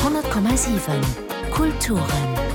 100,7 Kulturen.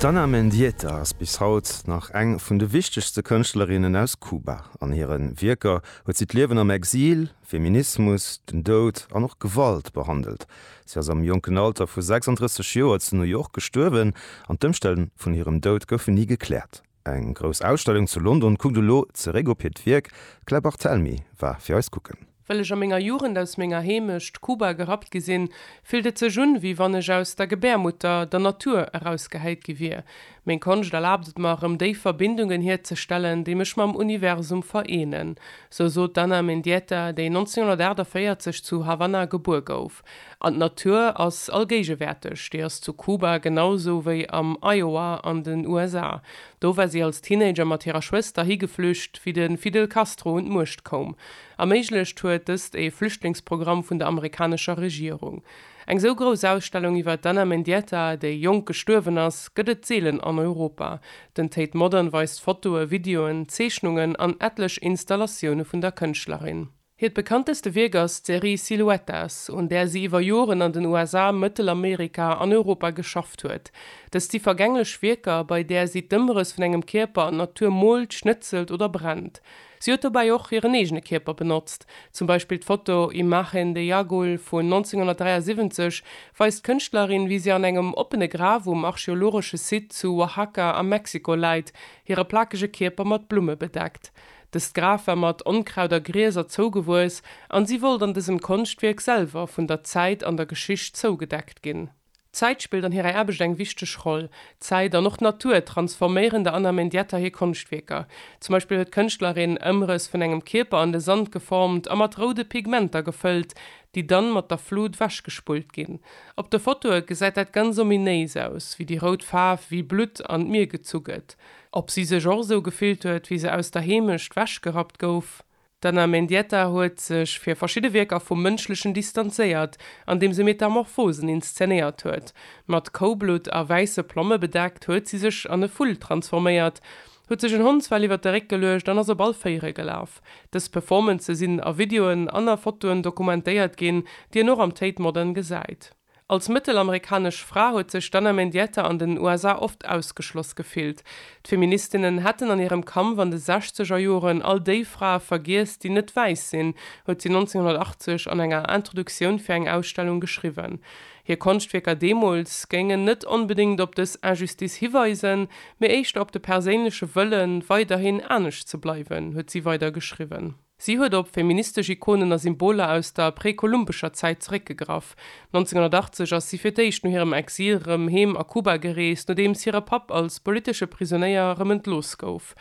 D'Ana Mendieta ass bis haut nach eng vun de wichtegste Kënschtlerinnen aus Kuba. An hire Wierker huet si d'Liewen am Exil, Feminismus, den Doud an och Gewalt behandelt. Si ass am jonken Alter vu 36 Joer zu New York gestuerwen an d'Ëmstänn vun hirem Doud goufen ni gekläert. Eng grouss Ausstellung zu London kuckt elo zeréck op hiert Wierk. D'Claire Barthelmy war fir eis kucken. Well ech a menger Jugend aus menger Heemecht Kuba gerappt gi sinn, fillt et sech un, wéi wann ech aus der Gebärmutter, der Natur, erausgehäit gi wier. Meng Konscht erlaabt et mer, erëm déi Verbindungen hierzestellen, déi mech mam Universum vereenen, sou sot d'Ana Mendieta, déi 1948 zu Havanna gebuer gouf. Alp. An d'Natur ass allgéigewäerteg, déi ass zu Kuba genau sou wéi am Iowa an den USA. Do war si als Teenager mat hirer Schwëster higeflücht, wéi de Fidel Castro un d'Muecht koum. Erméiglecht huet dëst ee Flüchtlingsprogramm vun der amerikanescher Regierung. Eng sou grouss Ausstellung iwwer d'Ana Mendieta, déi jonk gestuerwen ass, gëtt et seelen an Europa. Den Tate Modern weist Fotoe, Videoen, Zeechnungen an etlech Installatioune vun der Kënschtlerin. Hiert bekannteste Wierk ass d'Serie Siluetas, un där si iwwer Joren an den USA, Mëttelamerika an Europa geschafft huet. Dëst si vergänglech Wierker, bei där si d'Ëmrëss vun engem Kierper an d'Natur moolt, schnëtzelt oder brennt. Si huet dobäi och hiren eegene Kierper benotzt. Zum Beispill d'Foto Imagen de Jagul vun 1973 weist d'Kënschtlerin, wéi si an engem oppene Graf um archeologesche Site zu Oaxaca a Mexiko läit, hire plakege Kierper mat Blumme bedeckt. Dëst Graf war mat Onkraut a Grieser zougewuess an si wollt an dësem Konschtwierk selwer vun der Zäit an der Geschicht zougedeckt ginn. D'Zäit spillt an hirer Aarbecht eng wichteg Roll. D'Zäit an och d'Natur transforméieren der Anna Mendieta hir Konschtwierker. Zum Beispill huet d'Kënschtlerin Ëmrëss vun engem Kierper an de Sand geformt a mat roude Pigmenter gefëllt, déi dann mat der Flut wechgespullt ginn. Op de Fotoe gesäit dat ganz ominéis aus, wéi déi rout Faarf wéi Blutt an d'Mier gezu gëtt. Ob si sech och esou gefillt huet, wéi se aus der Heemecht wechgerappt gouf? D'Anna Mendieta huet sech fir verschidde Wierker vum Mënschlechen distanzéiert, andeem se Metamorphosen inszenéiert huet. Mat Koublutt a wäisse Plomme bedeckt, huet si sech an e Vull transforméiert, huet sech en Hondsfell iwwer de Réck geluecht an ass op all Véiere gelaf. Dës Performancë sinn a Videoen an a Fotoen dokumentéiert ginn, déi een och am Tate Modern gesäit. Als mëttelamerikanesch Fra huet sech d'Anna Mendieta an den USA oft ausgeschloss gefillt. D'Feministinnen hätten an hirem Kampf an de sechzeger Joren all déi Frae vergiess, déi net wäiss sinn, huet si 1980 an enger Introduktioun fir eng Ausstellung geschriwwen. Hir Konschtwierker deemools géingen net onbedéngt op dës Injustice hiweisen, mee éischter op de perséinleche Wëlle weiderhin anescht ze bleiwen, huet si weider geschriwwen. Si huet op feministesch Ikonen a Symboler aus der präkolumbescher Zäit zeréckgegraff. 1980 ass si fir d'éischt no hirem Exil rëm heem a Kuba gereest, nodeems hire Papp als politesche Prisonéier rëm entlooss gouf.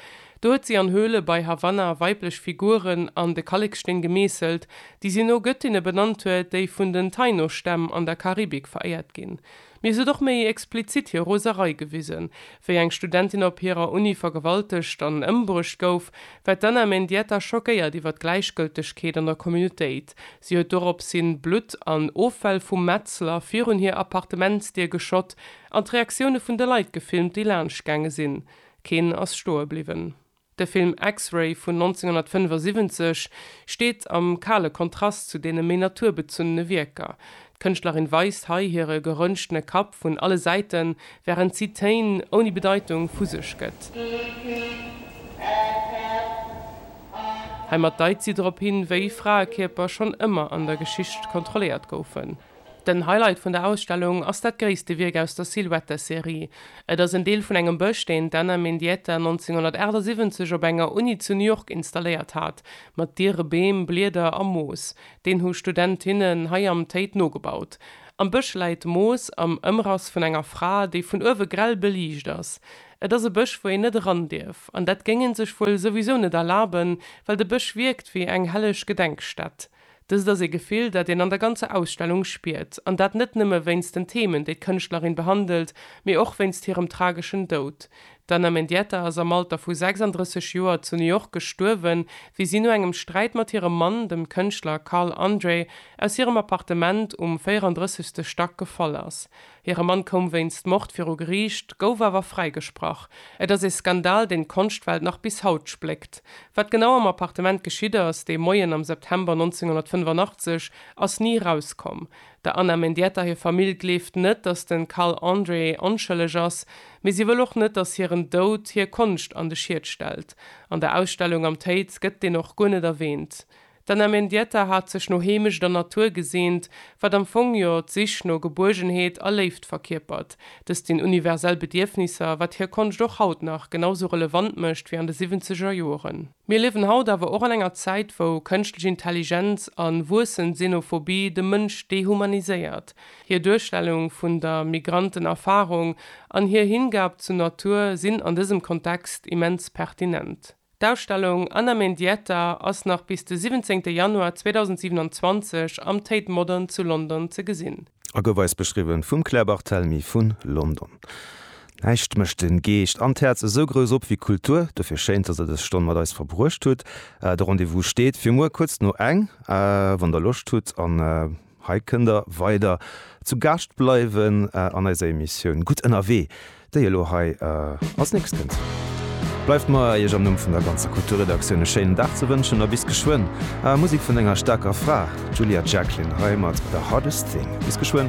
Do huet si an Höhle bei Havanna weiblech Figuren an de Kalleksteen gemeesselt, déi si no Gëttinne benannt huet, déi vun den Taino-Stämm an der Karibik veréiert ginn. Mir sot och méi explizit hir Roserei gewisen, wéi eng Studentin op hirer Uni vergewaltegt an ëmbruecht gouf, war d'Anna Mendieta schockéiert iwwer d'Gläichgëltegkeet an der Communautéit. Si huet dorops hin Blutt an Offäll vum Metzler virun hir Appartementsdier geschott an d'Reaktioune vun de Leit gefilmt, déi laanscht gaange sinn. Keen ass stoe bliwwen. De Film X-Ray vun 1975 steet am kale Kontrast zu deene méi naturbezunne Wierker. D'Kënschtlerin weist hei hire gerënschtene Kapp vun alle Säiten, wärend si Téin ouni Bedeitung vu sech gëtt. Heimat deit si drop hin, wéi Fraekierper schonn ëmmer an der Geschicht kontrolléiert goufen. Den Highlight vun der Ausstellung ass dat gréisste Wierk aus der Silhouette-Serie. Et ass en Deel vun engem Bësch, deen d'Anna Mendieta 1978 op enger Uni zu New York installéiert hat, mat diere Beem, Blieder a Moos. Deen hu Studentinnen hei am Tate nogebaut. Am Bësch läit Moos am Ëmrass vun enger Fra, déi vun uewe grell beliicht ass. Et ass e Bësch, wou een net eran dierf. An dat géing ee sech wuel souwisou net erlaben, well de Bësch wierkt wéi eng helleg Gedenkstätt. Dëst ass ee Gefill, dat een an der ganzer Ausstellung spiert, an dat net nëmme wéinst den Themen, déi d'Kënschtlerin behandelt, mee och wéinst hirem trageschen Doud. D'Anna Mendieta ass am Alter vu 36 Joer zu New York gestuerwen, wéi si no engem Sträit mat hirem Mann, dem Kënschtler Carl Andre, aus hirem Appartement um 34. Stack gefall ass. Hire Mann koum wéinst Mord viru Geriicht, gouf awer fräigesprach. Et ass ee Skandal, deen d'Konschtwelt nach bis haut spléckt. Wat genau am Appartement geschitt ass, dee Moien am September 1985, ass ni erauskomm. Der Anna Mendieta hir Famill gleeft net, datt de Carl André onschëlleg ass, mee si wëll och net, datt hiren Doud hir Konscht an de Schiet stellt. An der Ausstellung am Tate gëtt deen och guer net erwähnt. D'Anna Mendieta hat sech no Heemecht an Natur geseent, wat am Fong jo d'Sich no Gebuergenheet a Léift verkierpert. Dëst sinn universell Bedierfnisser, wat hir Konscht och haut nach genau sou relevant mécht wéi an de siwwenzeger Joren. Mir liewen haut awer och an enger Zäit, wou Kënschtlech Intelligenz an wuessend Xenophobie de Mënsch dehumaniséiert. Hir Duerstellung vun der Migrantenerfarung an hir Hingab zur Natur sinn an dësem Kontext immens pertinent. D'Ausstellung Anna Mendieta ass nach bis de 17 Januar 2027 am Tate Modern zu London ze gesinn. A gouf eis beschriwwen vum Claire Barthelmy vun London. Näischt mécht den Geescht an d'Häerz esou grouss op wéi Kultur. Dofir schéin dass der dës Stonn mat eis verbruecht hutt. De Rendez-vous steet fir muer kuerz no eng wann der Loscht hutt an Hei kënnt der weider zu Gaascht bleiwen an eiser Emissioun Gutt ënnerwee, déi elo hei als nächst kënnt. Bleift mer, Iech am Numm vun der ganzer Kulturredaktioun e schéinen Dag ze wënschen a bis geschwënn. Ah, Musek vun enger staarker Fra, d'Julia Jacklin hei mat The Hardest Thing. Bis geschwënn.